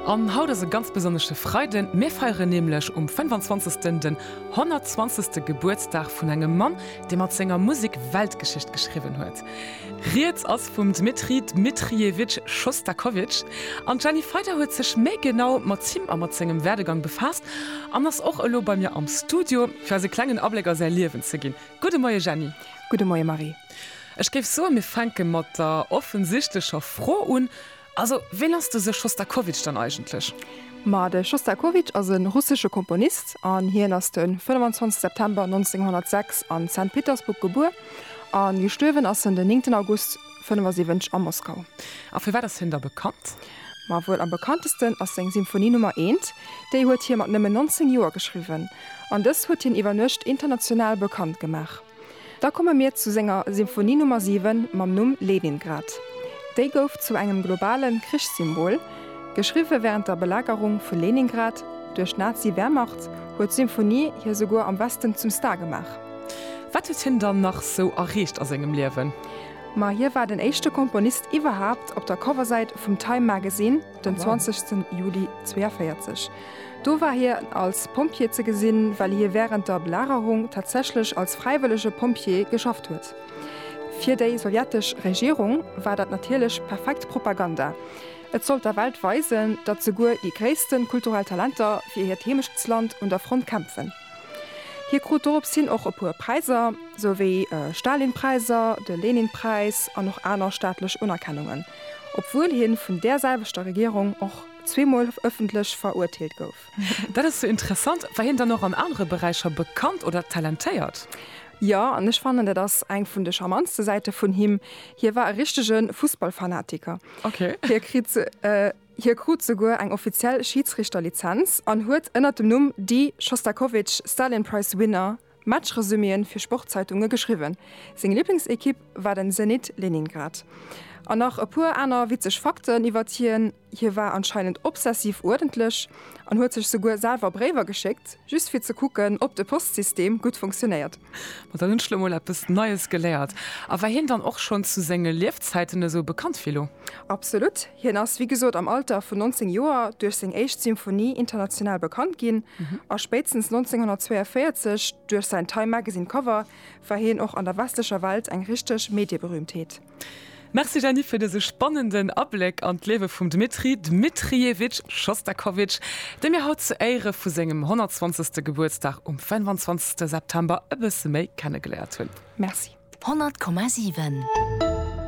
An haut ass e ganz besonnesche Freiden, mir feieren nämlech um 25 den 120 Gebuertsdag vun engem Mann, dee mat senger Musek Weltgeschicht geschriwwen huet. Rieds ass vum Dmitri Dmitrievitsch Schostakowitsch. An d'Jenny Feyder huet sech méi genau mat him a mat sengem Werdegang befaasst an ass och elo bei mir am Studio, fir eis e klengen Abléck a säi Liewen ze ginn. Gudde Moie Jenny. Gudde Moie Marie. Ech géif soen, mir fänke mat der offensichtlecher Fro un, Also, ween ass dëse Schostakowitsch dann eigentlech? Ma de Schostakowitsch ass e russesche Komponist an hien ass de 25 September 1906 a Sankt Petersburg gebuer a gestuerwen ass en den 9 August 75 a Moskau. A firwat ass hien da bekannt? Ma wuel am bekanntesten ass seng Symphonie Nummer eent. Déi huet hie mat nëmmen 19 Joer geschriwwen an dës huet hien iwwer Nuecht international bekannt gemaach. Da komme mir zu senger Symphonie Nummer 7 mam Numm Leningrad. Déi gouf zu engem globale Krichssymbol. Geschriwwe wärend der Belagerung vu Leningrad duerch d'Nazi-Wehrmacht, huet d'Symphonie hie souguer am Westen zum Star gemaach. Wat huet hien dann nach sou erreecht a sengem Liewen? Ma hie war den éischte Komponist iwwerhaapt op der Coversäit vum Time Magazine. den 20. Juli 42. Do war hie als Pompjee ze gesinn, well hie wärend der Belagerung tatsächlech als fräiwëllege Pompjee geschafft huet. Fir déi sowjetesch Regierung war dat natierlech perfekt Propaganda. Et sollt der Welt weisen, datt souguer déi gréisste kulturell Talenter fir hiert Heemechtsland un der Front kämpfen. Hie krut dorops hin och e puer Präiser, sou wéi e Stalinpräiser, de Leninpräis an och aner staatlech Unerkennungen, obwuel hien vun där selwechter Regierung och zweemol ëffentlech verurteelt gouf. Dat ass jo interessant. War hien dann och an anere Beräicher bekannt oder talentéiert? Jo, an ech fannen, dat ass eng vun de charmantste Säite vun him, hie war e richtege Fussballfanatiker. Hie kritt. Hie krut souguer eng offiziell Schiidsrichterlizenz an huet ënnert dem Numm Dee Shostakovich Stalin Prize Winner Matchresüméeën fir Sportzeitunge geschriwwen. Seng Liblingsekipp war den Zenit Leningrad. An nach e puer aner witzeg Fakten iwwert hien, Hie war anscheinend obsessiv uerdentlech an huet sech souguer selwer Bréiwer geschéckt, just fir ze kucken, ob de Postsystem gutt funktionéiert. Ma dann hunn ech lo mol eppes Neies geléiert. A war hien dann och schonn zu senge Liefzäiten esou bekannt wéi elo? Absolut. Hien ass, wéi gesot, am Alter vun 19 Joer duerch seng éischt Symphonie international bekannt ginn, a spéitstens 1942, duerch säin Time Magazine Cover, war hien och an der westlecher Welt eng richteg Medieberühmtheet. Merci Jeanny fir dëse spannenden Abléck an d'Liewe vum Dmitri Dmitrievitsch Schostakowitsch, dee mir haut zu Éiere vu sengem 120. Gebuertsdag um 25. September e bësse méi kennegeléiert hunn. Merci. 100,7.